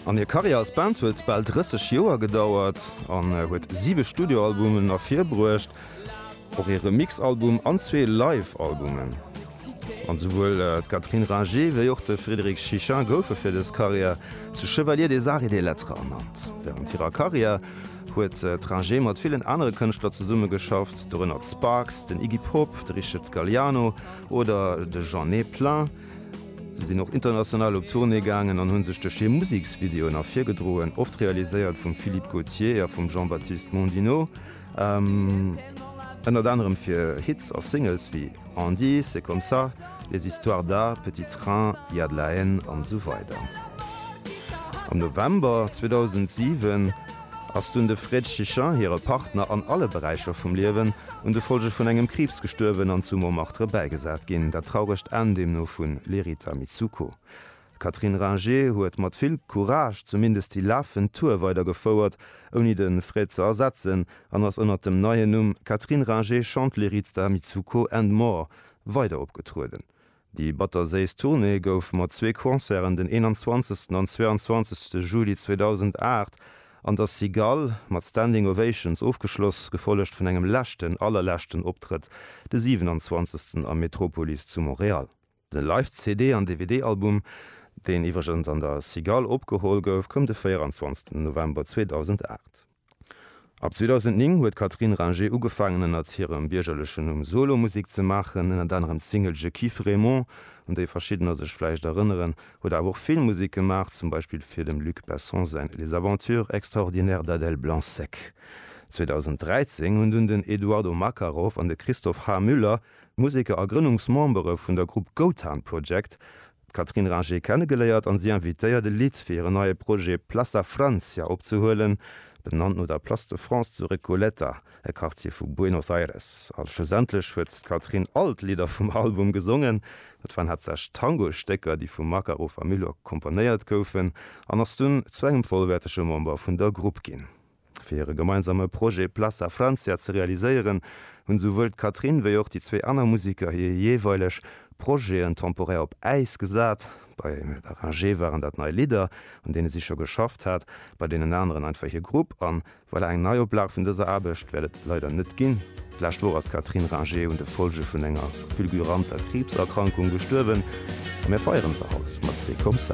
An hir Karriär als Band huet bal 30 Joer gedauert an huet siwe Studioalbumen ervirbruecht, och ee Remixalbum an zwee Live-Albumen. An souwuel d'Catherine Ringer wéi och de Frédéric Chichin goufe fir dës Karriär zu Chevalier des Arts et des Lettres ernannt. Wärend hirer Karriär huet d'Ringer mat villen anere Kënschtler zesummegeschafft, dorënner d'Sparks, den Iggy Pop, de Richard Galliano oder de Jeanne Plain. Si sinn och international op Tournée gaangen an hu sech duerch hir Museksvideoen ervirgedroen, oft realiséiert vum Philippe Gautier a vum Jean-Baptiste Mondino. Ënnert anerem fir Hits a Singles wéi On dit, C'est comme ça, Les histoires d'A, Petit train, Il y a de la haine an esou weider. Am November 2007 Ass dunn de Fred Chichin, hire Partner an alle Beräicher vum Liewen, un de Folge vun engem Kriibs gestuerwen an zu Montmartre bäigesat ginn. Dat trauregt Enn deemno vu Lerita Mitsuko. D'Catherine Ringer huet mat vill Courage zumindest déi lafend Tour weidergefouert, ouni de Fred ze ersetzen, an ass ënnert dem neien Numm Catherine Ringer Chante Lerita Mitsuko and More weider opgetrueden. Déi batterséiss Tournée gouf mat zwee Concerten den 21 an 22 Juli 2008 an der Cigale mat Standing Ovations ofgeschloss, gefollegt vun engem leschten, allerleschten Optrëtt de 27 am Metropolis zu Montréal. De Live-CD an DVD-Album, deen iwwregens an der Cigale opgeholl gouf, koum de 24 November 2008. Ab 2009 huet d'Catherine Ringer ugefaangen ënnert hirem biergerlechen Numm Solo Musek ze maachen, ënnert anerem d'Single Je kiffe Raymond, un déi verschiddener sech vläicht erënneren, huet awer och Filmmusek gemaach, zum Beispill fir dem Luc Besson säin Les aventures extraordinaires d'Adèle Blanc-Sec. 2013 hunn dunn den Eduardo Makarov an de Christophe H. Müller, Museker a Grënnungsmembere vun der Grupp Gotan Project, d'Catherine Ringer kennegeléiert an si invitéiert e Lidd fir hiren neie Projet Plaça Francia opzehuelen, benannt no der Place de France zu Recoleta, e Quartier vu Buenos Aires. A schlussendlech huet d'Catherine all d'Lidder vum Album gesongen. Dat waren haaptsächlech Tango-Stécker, déi vum Makarov a Milok komponéiert goufen, an ass dunn zu engem vollwäertege Member vun der Grupp ginn. Fir hire gemeinsame Projet Plaça Francia ze realiséieren, hunn esouwuel d'Catherine wéi och déi zwee aner Museker hir jeeweileg Projeten temporär op Äis gesat. Bei Emile Beranger waren dat nei Lidder, un deene si scho geschafft hat, bei deenen aneren einfach hir Grupp. A voilà, eng Neioplage vun dëser Aarbecht wäert et leider net ginn. D'lescht Woch ass d'Catherine Ranger un de Follge vun enger fulguranter Kriibserkrankung gestuerwen a mir feieren se haut mat C'est comme ça.